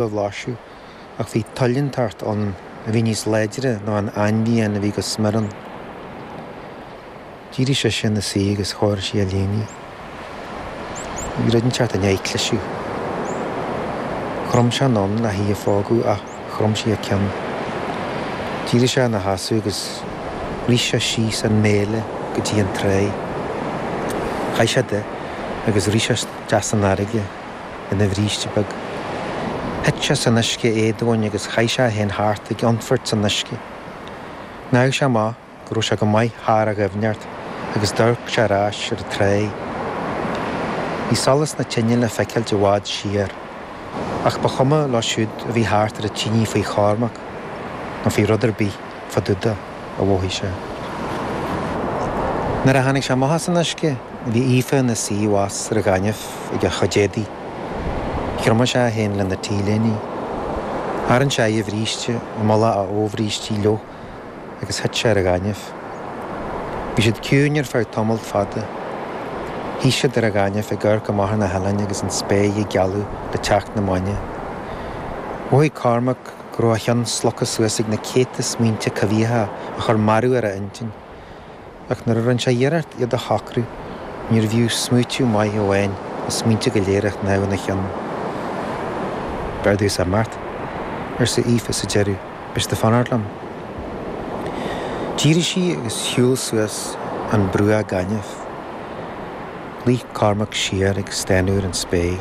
a bhlaiseadh, ach bhí toil inteacht ann a bhí níos láidre ná an ainmhian a bhí go smior ann. D'éirigh sise ina suí agus chóirigh sí a léinidh. Bhí rud inteacht i ndiaidh cliseadh. Chrom sé anonn le hí a phógadh ach chrom sí a ceann. D'éirigh sé ina sheasamh agus rith sé síos an méile go dtí an tráigh. Chaith sé de agus rith sé isteach san fharraige. ina bhríste beag. Thit sé san uisce éadomhain agus chaith sé é féin thart ag ionfairt san uisce. Shnámh sé amach go raibh sé go maith thar a dhoimhneacht agus d'amharc sé ar ais ar an tráigh. Bhí solas na tine le feiceáilt i bhfad siar, ach ba chuma leo siúd a bhí thart ar an tinidh faoi Chormac, nó faoi rud ar bith fadúda. a mhothaigh sé. Nuair a tháinig sé amach as an uisce, bhí Aoife ina suí abhus ar an ghaineamh ag a chuid éadaí. Thriomaigh sé é féin lena t-léinidh. Tharraing sé air a bhríste, i mullach a fhobhríste fhliuch agus thit sé ar an ghaineamh. Bhí siad ciúin ar feadh tamalt fada. Shuigh siad ar an ghaineamh ag amharc amach ar na hoileáin agus an spéir ag gealadh le teacht na maidne. Mhothaigh Cormac. go raibh a cheann slogtha suas ag na céadta smaointe coimhthíocha a chuir mearú ar a intinn. Ach nuair a rinne sé iarracht iad a shocrú, níorbh fhiú smaoitiú maith amháin na smaointe go léir a shnámh ina cheann. B'fhearr domhsa imeacht, arsa Aoife sa deireadh, beidh siad ag fanacht liom. D'éirigh sí agus shiúil suas an bruach gainimh. Luigh Cormac siar ag stánadh ar an spéir.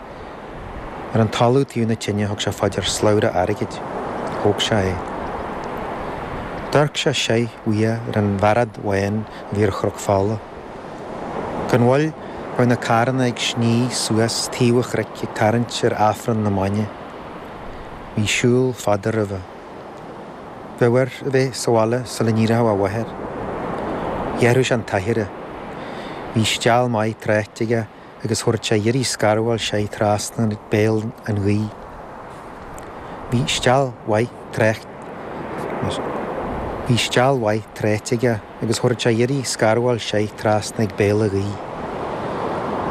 Ar an talamh taobh na tine thug sé fá dear slabhra airgid. Thóg sé é. D'amharc sé soir uaidh ar an bhearad bhán a bhí ar Chnoc Fola. Gan mhoill bheadh na carranna ag sní suas taobh an chnoic ag tarraingt ar Aifreann na maidne. Bhí siúl fada roimhe. Bheadh air a bheith sa bhaile sula n-éireochadh a mháthair. Ghearrfadh sé an t-aichearra. Bhí steall mhaith tráite aige agus thabharfadh sé iarraidh scarbháil soir trasna ag béal an ghaoith. Bhí steall mhaith trácht, bhí steall mhaith tráite aige agus thabharfadh sé iarraidh scarbháil soir trasna ag béal a' ghaoith.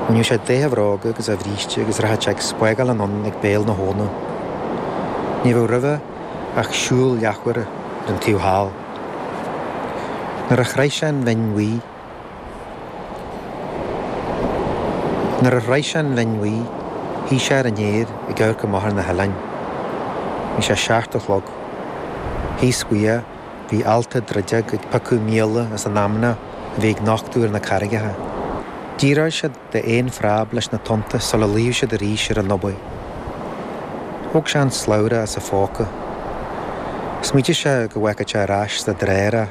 Bhainfeadh sé de a bhróga agus a bhríste agus rachadh sé ag spágáil anonn ag béal na habhna. Ní bheadh roimhe ach siúl leathuaire ar an taobh thall. Nuair a shroich sé an Bhinn Bhuí, Nuair a shroich sé an Bhinn Bhuí, shuigh sé ar an fhéar ag amharc amach ar na hoileáin. Bhí sé seacht a chlog. Thíos uaidhe, bhí ealta druideag ag piocadh míola as an fheamnaigh a bhí ag nochtadh ar na carraigeacha. D'fhíoráil siad. d'aon phreib leis na tonnta sula luíodh siad arís ar an dumhaigh. Thóg sé an slabhra as a phóca. Smaoitigh sé go bhféachfadh sé ar ais sa drár é.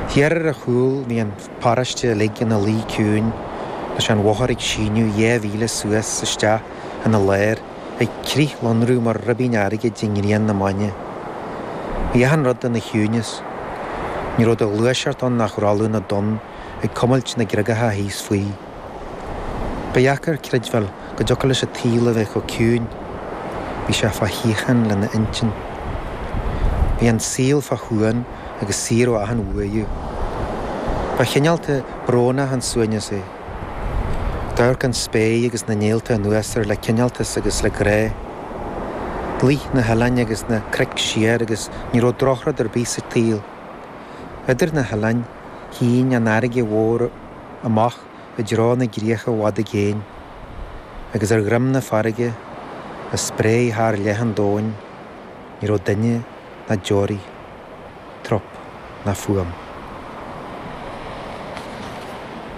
Thiar ar a chúl bhí an pharóiste uilig ina luí ciúin leis an bhóthar ag síneadh dhá mhíle suas is isteach ina lár ag crithlonrú mar ribín airgid i ngrian na maidne. Bhí achan rud ina chiúineas. Ní raibh de ghluaiseacht ann ach rolladh na dtonn ag cumailt na gcreagacha thíos faoi. Ba dheacair creidbheáil go dtiocfadh leis an tsaol a bheith chomh ciúin. Bhí sé fá shíocháin lena intinn. Bhí an saol fá shuan agus saor ó achan bhuaireamh. Ba chineálta, brónach an suaimhneas é. D'amharc an spéir agus na néalta anuas air le cineáltas agus le grá. Luigh na hoileáin agus na cnoic siar agus ní raibh drochrud ar bith sa tsaol. Idir na hoileáin. shín an fharraige mhór amach i dtreo na gcríocha i bhfad i gcéin, agus ar dhroim na farraige, a spréigh thar leath an domhain, ní raibh duine ná deoraí, trup ná fuaim.